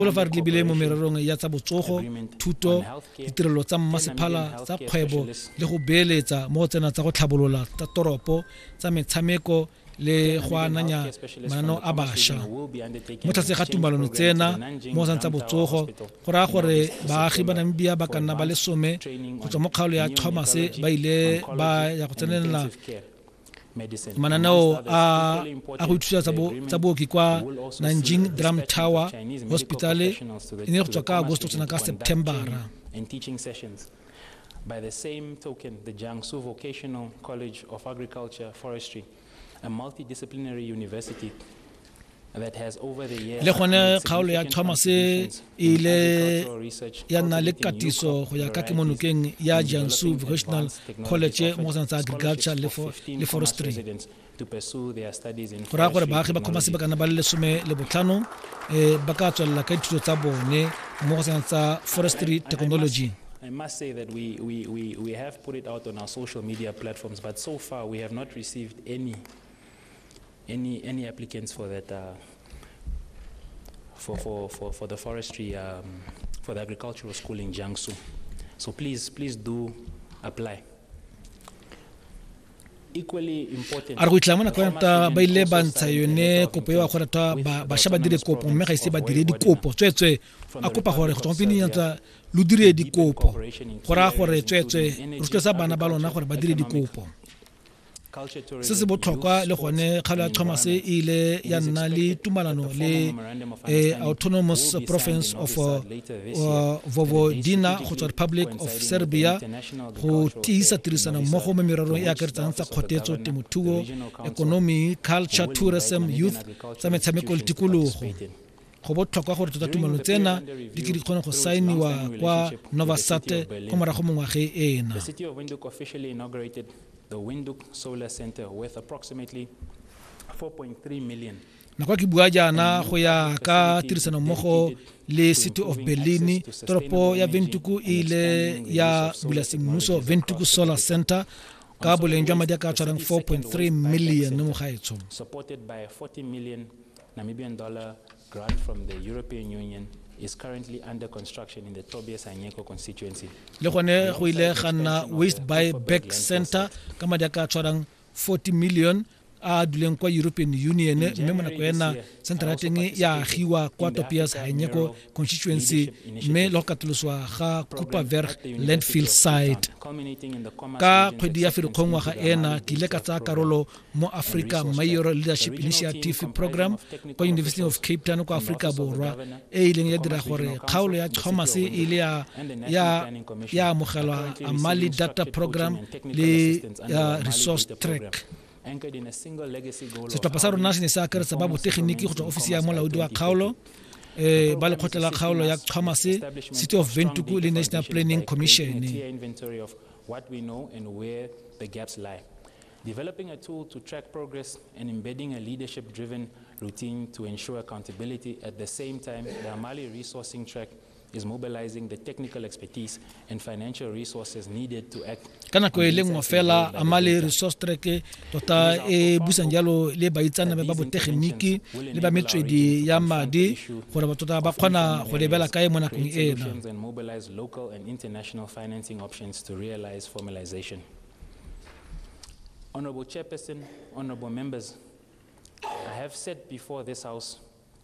Boulevard lebile mo mererong ya tsa botsogo, thuto, ditirelo tsa mmasephala tsa kgwebo le go beeletsa mo go tsena tsa go tlhabolola tsa toropo tsa metshameko le go ananya mananeo a bašwa mo tlase ga tumalano tsena mo tsa botsogo go raya gore baagi ba namibia ba ka nna ba lesome go tswa mo kgaolo ya thomas ba ile ba ya go tsenela mananeo a a go ithusa tsa booki kwa nanjing drum tower hospital e ne go tswa ka agosto tsena ka septembera By the same token, the Jiangsu Vocational College of Agriculture Forestry, a multidisciplinary university le gone kgaolo ya thomas e ile ya nna le katiso go ya ka kemonokeng ya jiangsu vocational college mo go sana tsa agriculture le forestry go raya gore baagi ba kgoma sebakana ba le lesome le botlhano um ba ka tswelela ka dithuto tsa bone mo go sana tsa forestry technology I must say that we, we, we, we have put it out on our social media platforms, but so far we have not received any Any any applicants for that uh, for, for, for, for the forestry um, for the agricultural school in Jiangsu. So please please do apply. a re go itlha mona kwanta ba ile ba ntsha yone kopo eo a gore ta bašwa ba dire kopo mme ga ise ba dire dikopo tsweetswe a kopa gore go tswapene yantsa lo dire dikopo go raya gore tsweetswe rotloetsa bana ba lona gore ba dire dikopo se se botlhokwa le gone kgalo ya thomas e ile ya nna le tumalano le eh, autonomous province of uh, uh, vovodiana go tswa republic of serbia go tiisa tirisano mmogo mo mererong e akaretsang tsa kgotetso temothuo economy culture tourism youth tsa metshameko le tikologo go botlhokwa gore tota tumelano tsena di tle di kgone go saeniwa kwa novasat kwa morago mo ngwageng ena the Windhoek Solar Center worth approximately 4.3 million nako ke bua jaana go ya ka tirisanommogo le city of berlin toropo ya ventuku e ile ya bula semmuso ventuku solar center ka boleng jwa madi a ka tshwarang 4.3 million mo gaetsho Namibian dollar grant from the European Union is currently under construction in the Tobias Anyeko constituency. Le gone go ile ga nna Waste by Back Center ka madi a ka tshwarang 40 million a duleng kwa european union mme mo nako ena centre ya teng ya agiwa kwa topias hanyeko constituency mme le go katoloswa ga cooperberg landfill site ka kgwedi ya ferikgong ngwaga ena ke ile ka tsaya karolo mo Africa Mayor Leadership Initiative Program kwa University of Cape Town kwa Africa Borwa e ileng ya dira gore kgaolo ya Thomas e ile ya ya ya amogelwa Amali Data Program le uh, Resource Track setlhopha sa rona se ne se akaretsa ba botegeniki go tswa ofisi ya molaodi wa kgaolo eh ba lekgotla la kgaolo ya Thomas City of Ventuku le National Planning Commission what we know and where the gaps lie Developing a tool to track progress and embedding a leadership-driven routine to ensure accountability. At the same time, the Amali resourcing track is mobilizing the technical expertise and financial resources needed to act ka nako e le nngwe fela amale resource track tota e busang jalo le baitsanabe ba botegeniki le ba metswedi ya madi gore batho tota ba kgona go lebela kae mo nakong ena Honorable Chairperson, honorable members, I have said before this House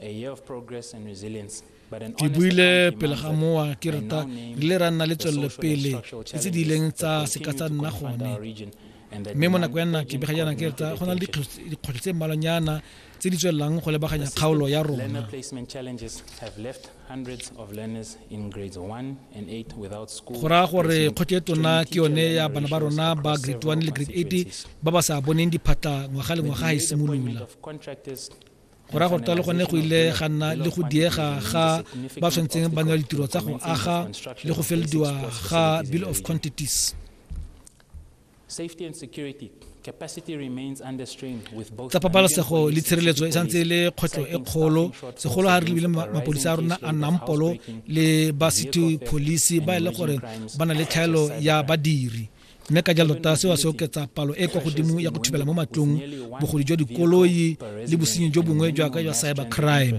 a year of progress and resilience. ke buile pele ga mowa ke reta re ile ra nna le tswelelopele le tse di ileng tsa seka tsa nna gone mme mo nako ya nna ke bega jaana ke reta go na le dikgwetlho tse mmalwanyana tse di tswelelang go lebaganya kgaolo ya rona. Go raya gore kgothe e tona ke yone ya bana ba rona ba grade 1 le grade 8 ba ba sa boneng diphatla ngwaga le ngwaga ga e simolola go raya gore talo gone go ile ga nna le go diega ga ba tshwanetseng ba newa ditiro tsa go aga le go felediwa ga bill of quantities tsa pabalesego le tshireletso e santse e le kgwetlho e kgolo segolo ga re lebile mapodisa a rona a nnang polo le ba city police ba e le gore ba na le tlhaelo ya badiri mme ka jalo ta seo se oketsa palo e kwa godimo ya go thubela mo matlong bogodi jwa dikoloi le bosenyi jo bongwe jwa ka jwa cyber crime